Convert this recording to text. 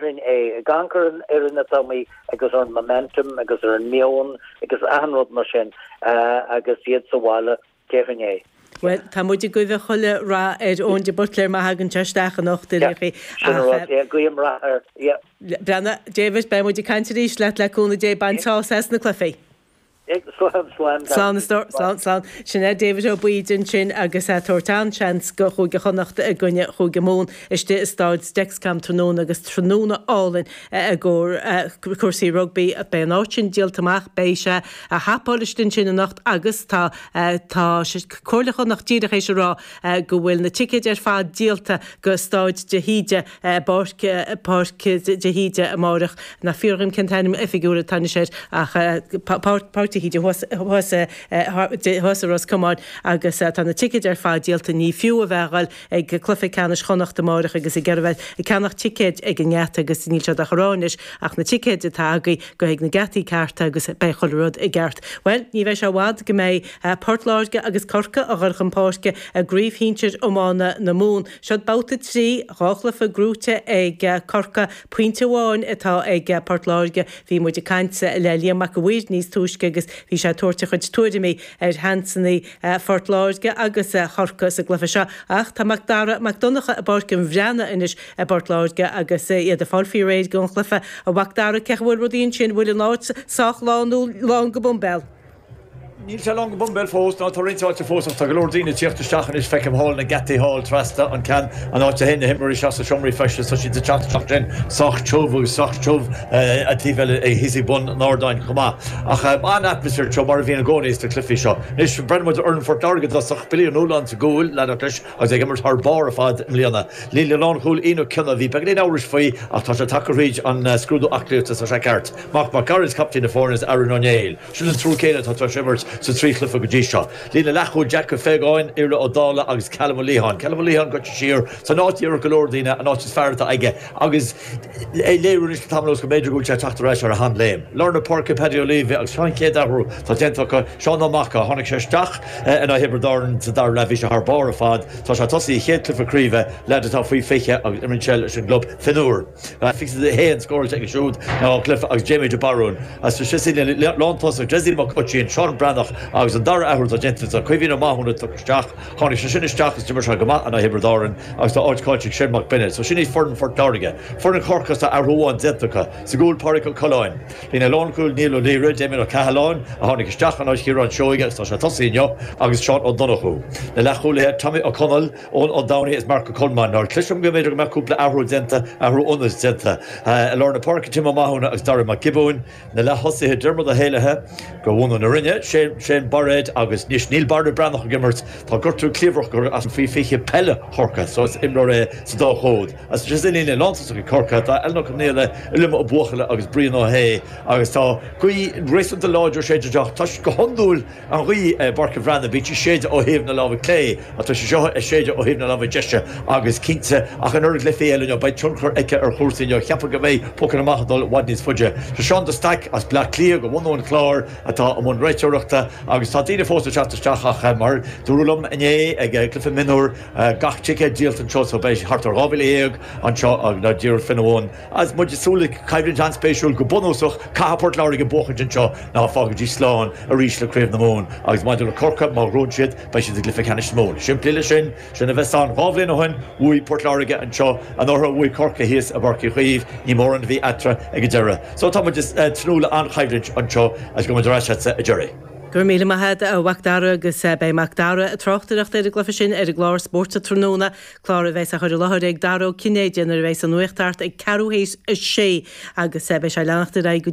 Roinn A, Ag amharc ar an fhoireann atá muid agus ar an momentum agus ar an meon agus achan rud mar sin agus iad sa bhaile, déarfainn é. Bhuel, tá muid ag guibhe chuile rath ar Eoin de Buitléar má thagann sé isteach anocht, a Liachy, ach. Yeah, sin an rud, yeah, guím rath air, yeah. Breanna, David, beidh muid ag caint arís leat, le cúnamh Dé, bain sásamh as na cluichí. Ag slán slán gan Slán is do, slán slán slán. Sin é David Ó Baoill ansin agus a' tabhairt an-seans go Chúige Chonnacht i gcoinne Chúige Mumhan istigh i Staid Dexcom tráthnóna agus tráthnóna álainn i gcomhair cúrsaí rugbaí. Beidh an áit sin díolta amach, beidh sé a' hopáil istigh ansin anocht agus tá tá Comhairle Chonnacht díreach éis a rá go bhfuil na ticéid ar fad díolta go Staid de hÍde bpáirc, Páirc de hÍde amáireach, níl a fhios agam cén t-ainm oifigiúil atá anois air ach Páirc Páirc de hÍde thuas thuas thuas i Ros Comáin agus tá na ticéid ar fad díolta. Ní fiú a bheith ag goil ag cluiche ceannais Chonnacht amáireach agus ag iarraidh bheith ag ceannach ticéid ag an ngeata agus níl siad ach ag rá anois ach na ticéid atá agaibh, gabh ag na geataí cearta agus beidh chuile rud i gceart. Bhuel, ní bheidh sé i bhfad go mbeidh Port Láirge agus Corcaigh ag dul chun páirce i gcraobh shinsir iomána na Mumhan. Seod babhta trí dhá chluiche gnóthaithe ag Corcaigh. Pointe amháin atá ag Port Láirge. Bhí muid ag caint le Liam Mac a' Mhaoir níos túisce agus bhí sé ag tabhairt a chuid tuairimí ar sheansannaí Phort Láirge agus Chorcaigh sa gcluiche seo. Ach tá Mac Dara Mac Donncha i bPáirc an Bhreathnaigh anois i bPort Láirge agus iad ag fáil faoi réir don chluiche. A Mhac Dara, cén chaoi a bhfuil rudaí ansin? Bhfuil an áit sách lán nó lán go boimbéal? Níl sé lán go boimbéal fós, ná tá roinnt áite fós, ach tá go leor daoine ag tíocht isteach anois. Feicim thall na geataí thall trasna an ceann, an áit a théann na himreoirí isteach sna seomraí feistis, tá siad ag teacht isteach ansin, sách tiubh agus sách tiubh an taobh eile thíos ag bun an ardáin chomh maith. Ach an-atmaisféar anseo, mar a bhíonn i gcónaí sna cluichí seo. Anois, breathnóidh muid ar fhoireann Phort Láirge i dtosach, Billy Ó Nualláin sa gcúl, lean ort leis, agus é ag imirt thar barr ar fad i mbliana. Líne lánchúil Ian Ó Cionnaith, bhí beagáinín amhrais faoi ach tá sé tagtha thríd an scrúdú aclaíochta, tá sé ceart. Marc Mac Gearailt, captaen na foirne, is Aaron Ó Néill. Sin an triúr céanna atá tar éis imirt sa trí chluiche go dtí seo. Líne leathchúil Jack Feagáin, Iarlaith Ó Dálaigh agus Callum Ó Liatháin. Callum Ó Liatháin goite siar san áit a déarfadh go leor daoine an áit is fearr atá aige agus é ag léiriú anois le tamall anuas go mb'fhéidir go bhfuil sé ag teacht ar ais ar a sheanléim. Lár na páirce Paddy Ó Laoidhe agus an chéad athrú atá déanta acu. Seán Ó Maca, tháinig sé isteach in aghaidh Thiobraid Árann sa dara leath, bhí sé thar barr ar fad. Tá sé ag tosaí a chéad cluiche craoibhe, leaid atá faoi 20 agus imríonn sé leis an gclub Fionnúr. Graphics is a haon scóráilte aige siúd ina dhá chluiche agus Jamie de Barún. Ansin sa líne lántosach Dessie Mac Uistín, Seán Breathnach agus an dara athrú atá déanta anseo, Caoimhín Ó Mathúna a tugadh isteach. Tháinig sé sin isteach is d'imir sé go maith in aghaidh Thiobraid Árann agus tá áit caillte ag Séan Mac Beinéid. So sin iad foireann Phort Láirge. Foireann Chorcaí is tá athrú amháin déanta acu. Sa gcúl Pádraig Ó Coileáin. Líne lánchúil Niall Ó Laoire, Damien Ó Cathaláin a tháinig isteach in áit Chiaráin Seoighe agus tá sé tosaí inniu agus Seán Ó Donnchú. Na leathchúlaithe Tommy Ó Conaill, Eoin Ó Domhnaigh is Mark Ó Colmáin, cloisim go mb'fhéidir go mbeadh cúpla athrú déanta, athrú ionaid déanta, i lár na páirce, Tim Ó Mathúna agus Daire Mac Giobúin, na leath-thosaithe, Diarmuid Ó hÉalaithe, de bhunadh na Rinne, Shane Bairéad agus anois níl Barra Breathnach ag imirt, tá gortú cliabhrach acu as an faoi 20 peile Chorcaigh so is imreoir é sa dá chód. As sin sa líne lántosaigh ag Corcaigh tá Alan Ó Conaola, Uilliam Ó Buachalla agus Brian Ó hAodha agus tá gaoth réasúnta láidir ag séideadh amach toisc go hiondúil An ghaoth i bPáirc an Bhreathnaigh, bheadh sí ag séideadh ó thaobh na láimhe clé, ach tá sí seo ag séideadh ó thaobh na láimhe deise, agus cinnte, ach an oiread le cluichí eile inniu, beidh tionchar aici ar chúrsaí inniu. Cheapfá go mbeidh pocanna amach ag dul i bhfad níos faide. Tá Seán de Stac, as Bleá Cliath, de bhunadh an Chláir, atá i mbun réiteoireachta, agus tá daoine fós ag teacht isteach, ach mar dúradh liom inné, ag cluiche mionúr, gach ticéad díolta anseo, so beidh thart ar 12,000 anseo, nó díreach faoina bhun. Agus muid ag súil le coimhlint an-spéisiúil, go bunúsach, caithfidh Port Láirge buachaint anseo nó fágaidís slán arís le Craobh na Mumhan agus maidir le Corcaigh, má ghnóthaíonn siad, beidh siad sa gcluiche ceannais sa Mumhain. Chomh simplí le sin, sin a bheas ann. Dhá bhliain ó shin, bhuaigh Port Láirge anseo anuraidh, bhuaigh Corcaigh thíos i bPáirc Uí Chaoimh, ní mórán a bhí eatarthu ag an deireadh. So tá muid ag tnúth le an-choimhlint anseo agus gabhfaidh muid ar ais agatsa deiridh. Go raibh míle maith agat a Mhacdara agus beidh Macdara ag tráchtaireacht ar an gcluiche sin ar an gclár Spórt an Tráthnóna. Clár a bheas á chur i láthair ag Dara Ó Cinnéide nuair a bheas an nuacht thart ag ceathrú théis a sé agus beidh sé ag leanacht ar aghaidh go dtí